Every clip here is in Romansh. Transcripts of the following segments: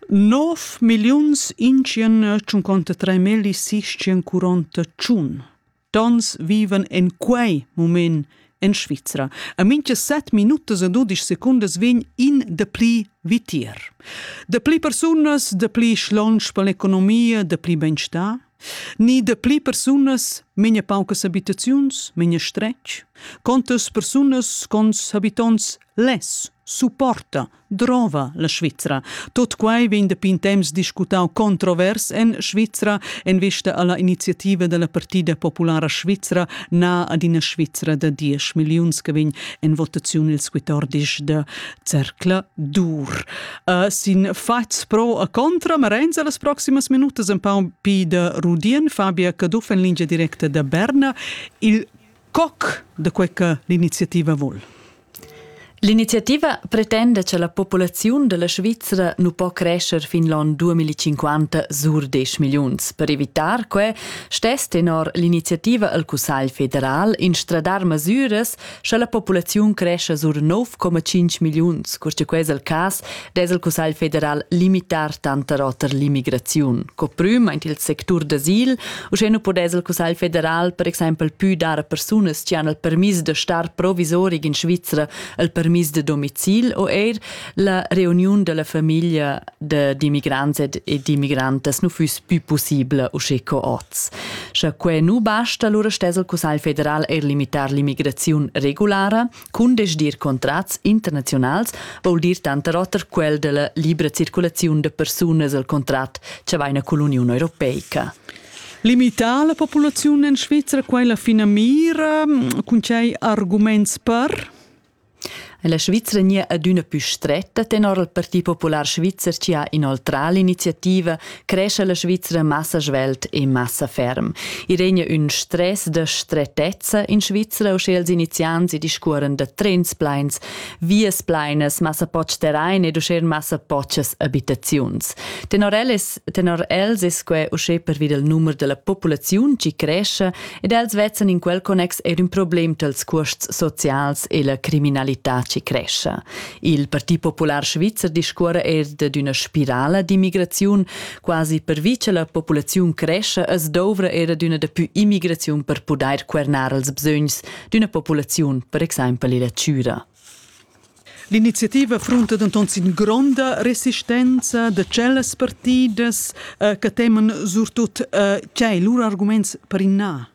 Nov milliuns intschien tschunconta tre melli sisschien curonta tschun. Tons vivan en quei mument en Svizra. A mincha set minutas e dudisch secundas vegn in de pli vitier. De pli persunas, de pli schlonsch per l'economia, de pli benstà, ni de pli persunas menia paucas abitaziuns, menia stretg, contas persunas cons habitonts Less, supporta, drova la Svizra. Tot quai vegn dapi in temps discutau controvers en Svizra en vista alla iniziativa della Partida Populara Svizra na ad ina Svizra da 10 milliuns che vegn en votaziun ils 14 de Zercla dur. Uh, sin fats pro a contra Marenza las proximas minutas un pa un pi de Rudien, Fabia Caduff en linea directa da Berna, il Coc da quei che l'iniziativa vul. L'iniziativa pretenda che la populaziun della Svizra nu po crescer fin l'on 2050 sur 10 milliuns. Per evitar que stess tenor l'iniziativa al Cussagl federal instradar masuras sche la populaziun cresce sur 9,5 milliuns, cur che ques al cas dess il Cussegl federal limitar tanter oter l'immigraziun. Co prüm aint il sectur d'asil, uschè nu podess il Cussegl federal per exaimpel pü dar a persunas chi han il permis da star provisorig in Svizra il permis da domicil o eir la reuniun della famiglia d'immigrants ed immigrantes nu füss pü possibla usché co oz. Scha que nu basta, lura stess il Cussegl federal eir limitar l'immigraziun regulara, Cundesdir contrats internaziunals vul dir tanter oter quel della libra circulaziun de persunas el contract che vaina cull'Uniun Europeica. Limità la populaziun en Svizzera quella finamira cun cei arguments per? La Svizzera nie adüna pü stretta tenor il Parti Popular Svizzer ci ha inoltrà l'iniziativa cresce la Svizra massa svelt e massa ferm. I regna ün stress da stretezza in Svizra, usche els iniziants i discuoren da trens plains, vias plainas, massa poch terrain ed usche massa pochas abitaziuns. Tenor, els, tenor els es que usche pervi del numero della popolaziun ci cresce ed els vezzan in quel connex er ün problem tals cuosts socials e la criminalità ci cresce. Il Parti Popular Svizzer discuora er dad üna spirala d'immigraziun. Quasi pervi cha la populaziun crescha as douvra era d'üna dapü immigraziun per pudair quernar els bsögns d'üna populaziun, per exaimpel illa Chüra. L'iniziativa frunta denton sin gronda resistenza da tschellas partidas eh, che teman surtut eh, tgei lur arguments per in na.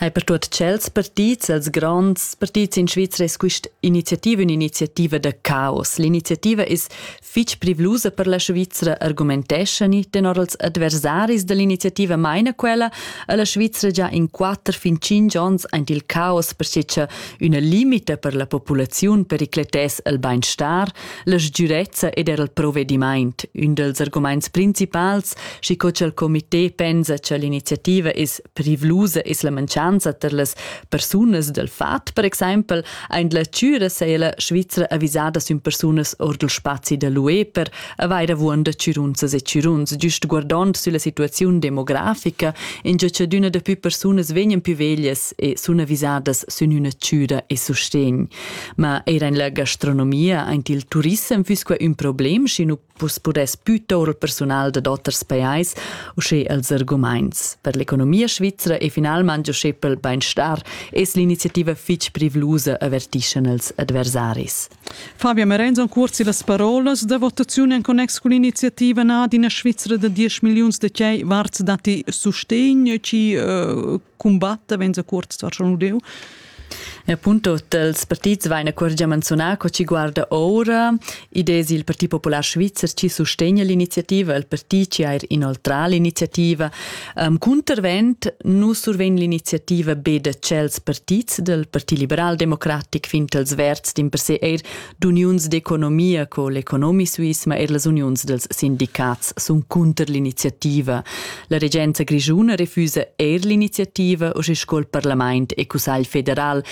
Hai per tuot tschels partits, els gronds partits in Svizra es quist'iniziativa ün'iniziativa da caos. L'iniziativa es fich privlusa per la Svizra, argumenteschani. Tenor als adversaris da l'iniziativa maina quella a la Svizra già in quatter fin tschinch ons aint il caos perche cha üna limita per la populaziun pericletess il bainstar, la sgürezza ed eir il provedimaint. Ün dals argumaints principals, schi co cha'l comitè pensa cha l'iniziativa es privlusa es la mancanza per las persunas dal fat, per exempel, ein la Tschüra sei la Svizra avisada sün persunas ord il spazi da l'UE per avair avuonda tschürunzas e tschürunz, giust guardond sulla situaziun demografica, in giacadüna da più persunas vegnan più veglias e sun avisadas sün üna Tschüra e sustegn. Ma eir in la gastronomia, aint il turissem füss quai ün problem, schi nu Vus pudess puto il persunal da oters pajais, usche els argumaints. Per l'economia svizra e finalmente usche pel beinstar es l'iniziativa fich privlusa avertischan els adversaris. Fabia Merenz en cursi las parolas da votaziun en connex con l'iniziativa na d'ina Svizzera da 10 miliuns de cei varts dati sustegn ci uh, combatta benzacuort station udeu. E appunto dels partits vaina corgia menzonar co ci guarda ora idesi il Parti Popular Svizzer ci sostegna l'iniziativa, il partit ci ha inoltrà l'iniziativa. Um, contravent nu surven l'iniziativa be de cels partits del Parti Liberal Democratic fint els verds din per se eir d'uniuns d'economia co l'economi suisse ma er las uniuns dels sindicats sun cunter l'iniziativa. La regenza grischuna refusa eir l'iniziativa o sche sco il parlament e cussagl federal